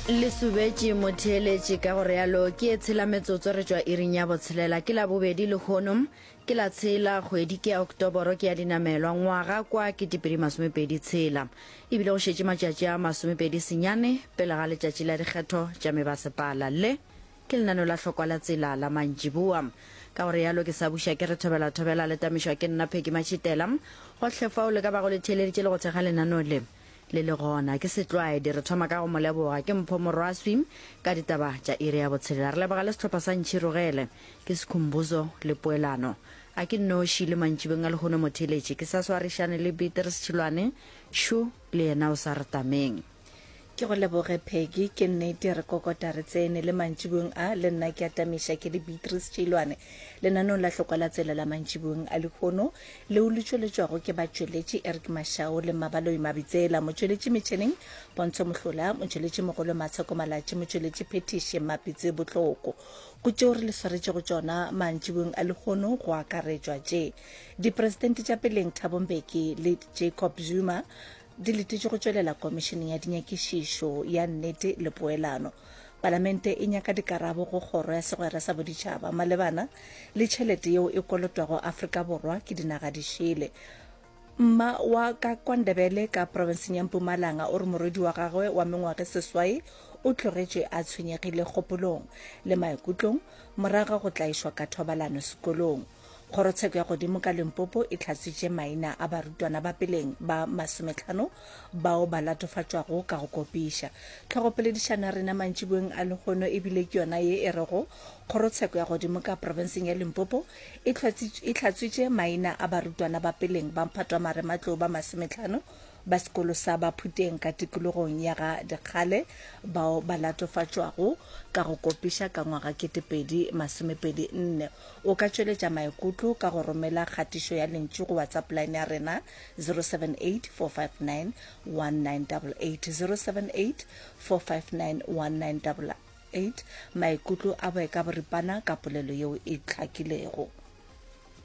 le subetše motheeletše ka go realo ke e tshela metsotso re tšwa iring ya botshelela ke la bobedi lehono ke la tshela kgwedi ke ya oktoboro ke ya dinamelwa ngwaga kwa ke tipedi masomepedi tshela ebile go šetše matšatši a masomepedi senyane pele ga letšatši la dikgetho tša mebasepala le ke lenano la hlokwa la tsela la mantšiboa ka go realo ke sa buša ke re thobela thobela le tamišwa ke nna pheki matšhitela gohle fao le ka bago le theeleditše le go thekga lenano le Le le gona, ke setlwaedi, re thoma ka go mo leboga. Ke mpho morwaswi ka ditaba tša iri ya botshelela. Re leboga le sehlopha sa Ntšhirogele. Ke Sikhumbuzo le Poelano. A ke nnoši le mantšibeng a lehono mo theeletše. Ke sa swarišane le Beater Sechilwane. Sho le yena o sa re tameng. Ke go leboge Peggy. Ke nnete, re kokota re tsene. Le mantšibong a, le nna ke a tamiša. Ke le Beatrice Tšilwane. Lenaneong la Hlokwa la Tsela la mantšibong a lehono, leo le tšweletšwago ke batšweletši Eric Mashau le Mmabaloi Mabitsela, motšweletši metšheneng Pontsho Mohlola, motšweletši mogolo Matsheko Malatši, motšweletši phethiši Mmapitse Botloko. Go tšeo re le swaretšego tšona mantšiboeng a lehono go akaretšwa tše, Dipresidente tša peleng Thabo Mbeki le Jacob Zuma, di letetše go tšwelela komišeneng ya dinyakišišo ya nnete le poelano palamente e nyaka dikarabo go kgoro ya segwera sa boditšhaba malebana le tšhelete yeo e kolotwago afrika borwa ke dinaga di šele mma wa ka kwandebele ka profenseng ya mpumalanga o re morwedi wa gagwe wa mengwage seswai o tlogetše a tshwenyegile kgopolong le maikutlong moraga go tlaišwa ka thobalano sekolong Kgorotsheko ya godimo ka Limpopo e tlhatswitše maina a barutwana ba peleng ba masometlhano bao ba latofatšwago ka go kopiša. Tlhogopoledišano ya rena mantšiboeng a lehono e bile ke yona ye e rego Kgorotsheko ya godimo ka profenseng ya Limpopo e tlhatswitše maina a barutwana ba peleng ba mphatwamare-matlou ba masometlhano ba sekolo sa Baphuteng ka tikologong ya ga Dikgale bao ba latofatšwago ka go kopiša ka ngwaga 2024. O ka tšweletša maikutlo ka go romela kgatišo ya lentšu go WhatsApp line ya rena 078 459 1988 078 459 1988 maikutlo a boeka boripana ka polelo yeo e hlakilego.